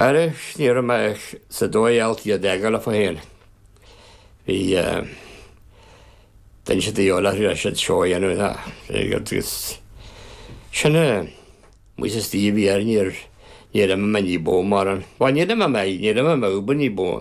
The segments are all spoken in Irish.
Arís, ní raibh mé sa dóigh alt iad eagal fá fhéin. Bhí duine siad a dheol aithrí leis siad seó a dhéanamh ná aige agus sin é muise is díobh bhí air níor, níor imigh mé ní ba mhó mar an, bhuel níor imigh mé, níor imigh mé uofa ní ba mhó.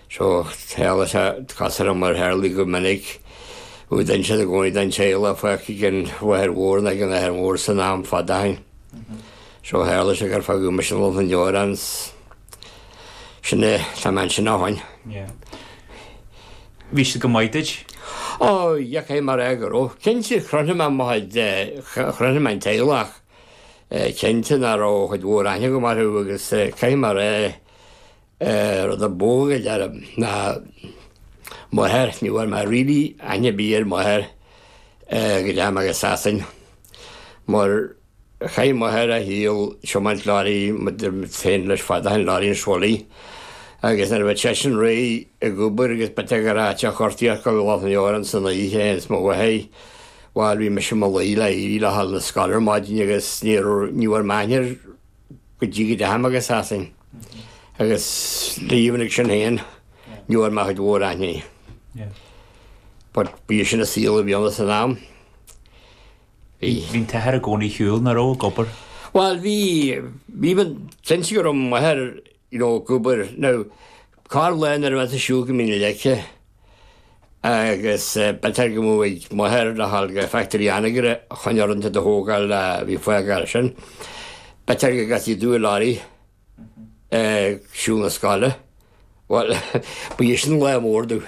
Seo scéal is ea casadh orm a tharlaigh go minic, nó dhein siad i gcónaí don té a loicfeadh ag an mháthair mhór nó ag an athair mhór san am fada ó shin. So tharlaigh sé gur fágadh mise i Loch na nDeorán agus sin é, tá mé ansin ó shin. Bhí siad go maith duit? Ó, dheachaigh mé ar aghaidh orthu. Cinnte, chrothnaigh mé mo chuid, chrothnaigh mé an teaghlach, cinnte ní raibh cuid mhór aithne agam orthu agus chuaigh mé ar aghaidh. rud ab óige dar liom, ná m'athair, ní bhfuair mé really aithne ar bith ar m'athair go ndeachaigh mé go Sasain, mar chaith m'athair a shaol ag tiomáint lorraí, mar d'imigh féin leis fada chun lorraí an Sholí, agus nuair a bhí seisean réidh ag obair agus b'fhéidir ag ar áit a chuartaíocht go Loch na nDeorán san oíche ins mo bhotháí, bhuel bhí mise i mo luí le éirí le ghabháil 'na scoile ar maidin agus ní bhfuair mé aithne ar go dtí go ndeachaigh mé go Sasain, agus even ag sin féin, ní bhfuair mé cuid mhór aithne air. But ba í sin an saol a bhí ann san am. Bhí. Bhí an t-athair i gcónaí ar shiúl nach raibh ag obair? Bhuel bhí, bhí, bhí, seans go raibh m'athair. you know, go bhfuair, now, carr lán ar bheith ar shiúl go Mín na Leice agus b'fhéidir go mbeadh m'athair le ghabháil go Factory Anagaire a choinne orntha do thógáil a bhí fágtha ansin. B'fhéidir go gcasfaí domh i lorry ag siúl na scoile. Bhuel, ba é sin an lá mór domh.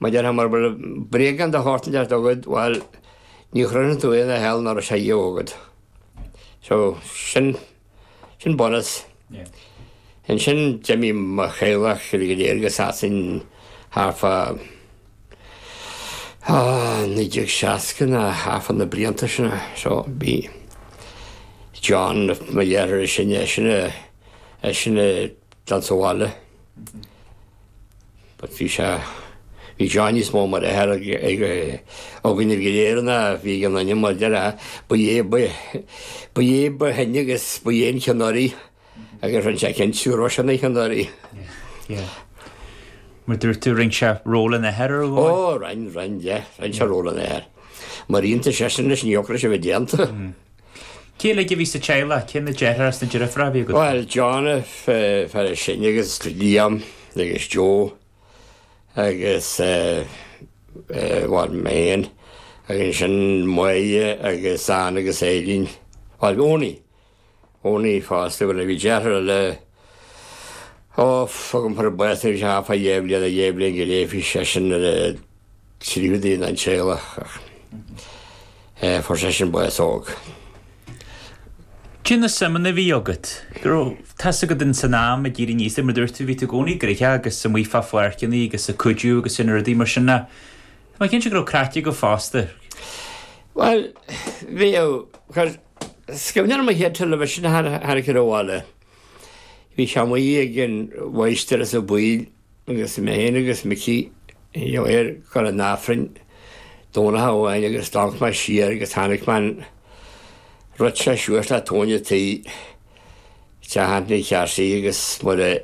Mar déarfá bhuel, bréagán de shórt inteacht agat, bhuel, ní chrothnaíonn tú aon hell nach raibh sé riamh agat. So, sin, sin bunús. Ansin d'imigh mo theaghlach uilig go léir go Sasain thart fá, ó, naoi déag seasca nó thart fá na blianta sin. So, bhí John, mo dheartháir is sine, eisean a, eisean a d'fhan sa bhaile. But bhí sé, bhí John níos mó mar athair ag, ag, againn uilig go léir ná bhí againn mar dheartháir, ba é, ba, ba é ba shine agus ba é an ceannaire agus rinne sé cinnte gur eisean an ceannaire. Yeah, yeah. Mar dúirt tú rinne sé ról an athair ar aghaidh? Ó, rinne, rinne, yeah, rinne sé ról an athair. Mar iontas sé sin leis an eocra sé bheith déanta. Mm. Cé uilig a bhí sa teaghlach? Cé na deartháir is na deirfiúr a bhí agat? Bhuel, John an fear is sine agus Liam agus Joe agus bhuel mé féin agus ansin Moya agus Anne agus Eileen. Bhuel, Eoin. Eoin fosta, bhuel a bhí deartháir eile, Ó, fágfaimid thart é anois a Phaidí Eibhlín, a Eibhlín, go léimfidh seisean ar a tríú duine den teaghlach, ach fuair seisean bás óg. Cé na suimeanna a bhí agat? Go raibh tá's agat in san am ag éirí aníos mar a dúirt tú bhí tú i gcónaí ag rith agus amuigh fá pháirceanna agus ag cuidiú agus sin rudaí mar sin. Tá mé cinnte go raibh craic agaibh fosta. Bhuel, bhíodh, tá, cuimhne agam ar an chéad television a tháinig chun an bhaile. Bhí sé amuigh ag an mháistir insa bhaile agus mé féin agus Micí ag dul chun an Aifrinn Domhnach amháin agus d'amharc mé siar agus chonaic mé an rud seo suas le tóin a' tí, Teach Anthony Charsie agus mura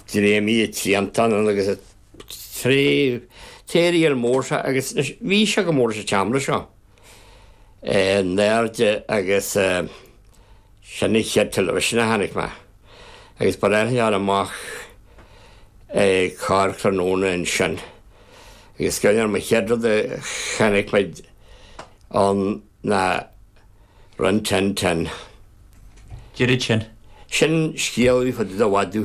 dtréigimid a' triantán ann agus a. Thréigh. An t-aerial mór seo agus anois bhí seo go mór san am seo. in airde agus sin an chéad television a chonaic mé agus ba léir thar amach é carr tráthnóna ansin agus go deireann an chéad rud a chonaic muid ann ná Rin Tin Tin. D'oiread sin. Sin scéal faoi fhad i do mhaidí.